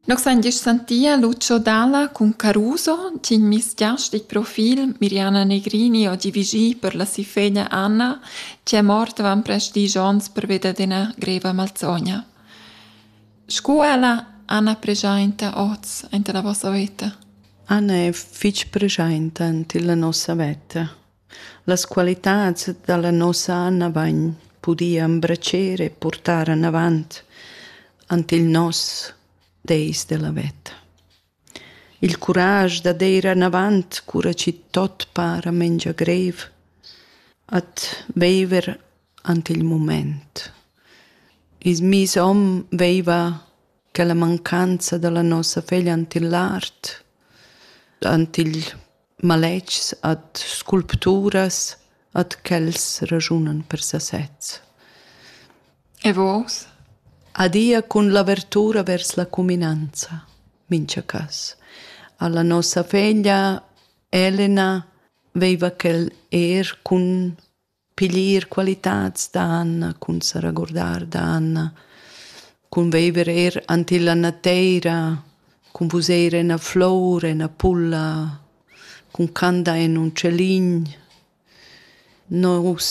Nos han gist santia Lucio Dalla cun Caruso, tg'in misgiastic profil, Miriana Negrini, oggi vigì per la si feglia Anna, che è morta van prest disch onns perveda d'ena greva malzogna. Scu ella, Anna preschainta oz anta la vossa veta? Anna è fitg preschainta ant illa nossa veta. Las qualitads dalla nossa Anna vain pudia embratscher e purtar anavant ant il nos Deis della veta. Il curaj da deir anavant cura chi tot para mengia greiv, at veiver ant il mumaint. I's miss hom veiva quella mancanza da la nossa feglia ant il lart, ant il maletgs, ad sculpturas, ad quels ragiunan per sasez. E vos? Adia cun l'avertura vers la cuminanza, mincha cas. Alla nossa feglia Elena veiva quel er cun piglier qualitads dan cun sa regurdar dan cun viver eir ant illa nateira cun vuser ena flour ena pulla cun candar in ün celin nus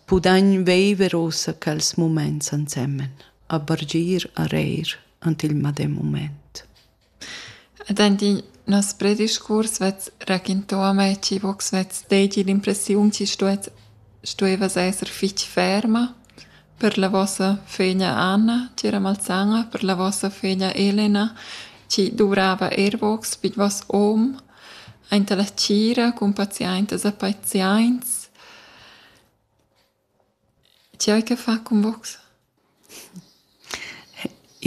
pudagn viver uossa quels mumaints ansemen a bargir a reir ant il madem mumaint Ed aint in noss prediscurs vess raquintà a mai chi vo'ch svess deigi l'impressiun chi stuess stuevas esser fich ferma per la vossa föglia Anna, tg'era malsana, per la vossa föglia Elena chi duvrava eir vogs be d'voss hom aint a la tgira cun paziaintas e paziaints. Ti hai che far cun vos?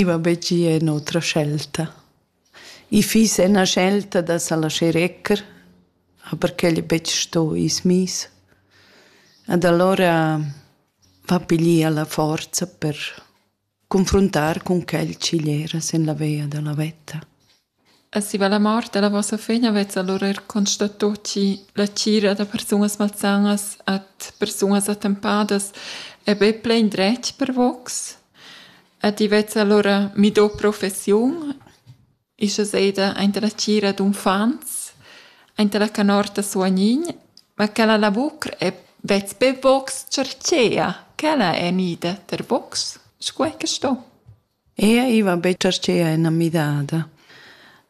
I va be gia en otra scelta. I fiss ena scelta da sa laschar ecker, aber quel è betg sto i's miss. Ed alura va piglier la forza per confruntar cun quel ch'igl era sin la via dalla veta. E si va la mort dalla vossa fegna vezza allora er constato chi la cira da persunas malsanas at persunas attempadas è be plein dretg per vox? E ti vezza allora mi do professiun? Ischa seida aint la tgira d'uffants, aint la canorta suognign, ma quella lavur è betg be box chartschea, quella è gnida per box, sco è que sto. Ea, i va be chartschea ena midada.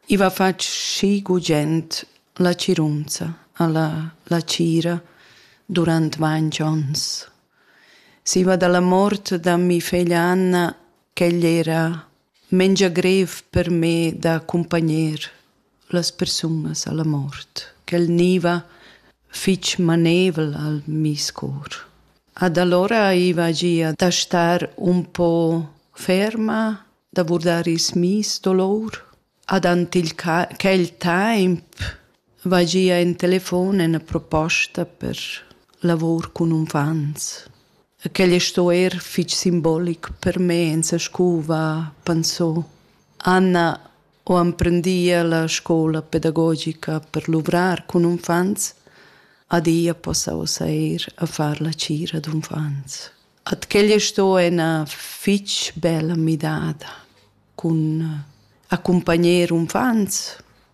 I va fatg schi gugent la cirunza a la, la tgira durant ventg ons. Si va dalla mort da mi feglia Anna, ch'egl era mengia grev per me da accumpagner las persunas alla mort. Quel gniva fich manevel al meis cor. Ad allora aiva gia da star un po ferma, da vurdar ils meis dolor. Ad ant il quel temp vai gia in telefon ena proposta per lavur cun uffants. E quel sto er fitg simbolic per me, en sa scuva, pensò. Anna ho emprendia la scola pedagogica per luvrar cun uffants, adia possa ossa eir a far la cira d'uffants. At quella sto ena fitg bella midada cun accompagner uffants,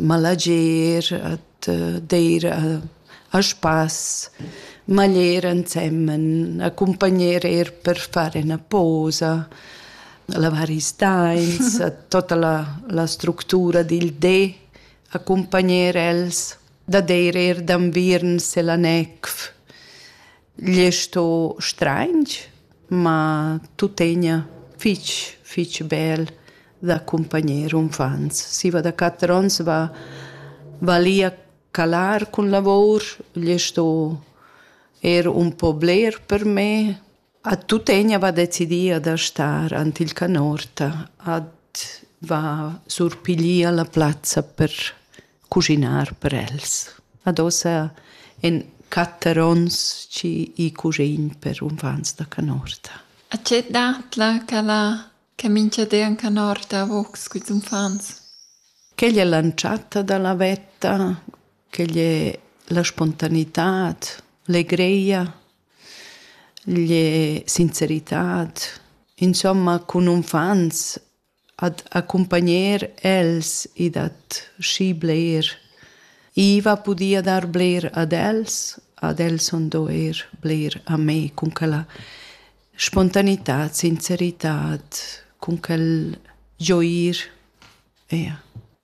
ma leger, d'eir a spass, ma ler ensemen, accumpagner eir per far üna posa, lavar i stains, tota la, la structura dil de, accumpagner els, da deir eir d'anviern se la necv. Igl è sto straintg, ma tuttegna fich, fich bel da accumpagner unfants. Siva da quatter ons va, val i a calar cun lavour, igl è sto er un po bler per me. A tuttegna va decidia da star ant il canorta, ad va surpiglier la plazza per cuschinar per els. Ad ossa en quatter ons chi i cusin per unfants da canorta. A tge datla ch'ella che mincha de an canorta a vocs culs unfants? Quegl è l'antschatta da la vetta, quegl è la spontanitad, legreia, l'e sinceritad. Insomma, cun unfants ad accumpagner els e dad schi bler. I va pudia dar bler ad els, ad els sun do eir bler a me cun quella spontanità, sincerità, cun quel gioir. Eja.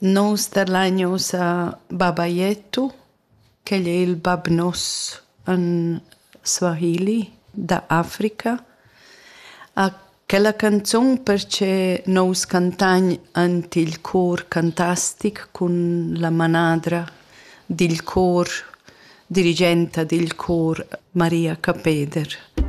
Nus tadlain ussa baba Jetto, ch'el è il bab nos in Swahili da Africa. A quella canzun perche nus cantagn ant il cor cantastic cun la manadra dil cor, dirigenta dil cor Maria Capeder.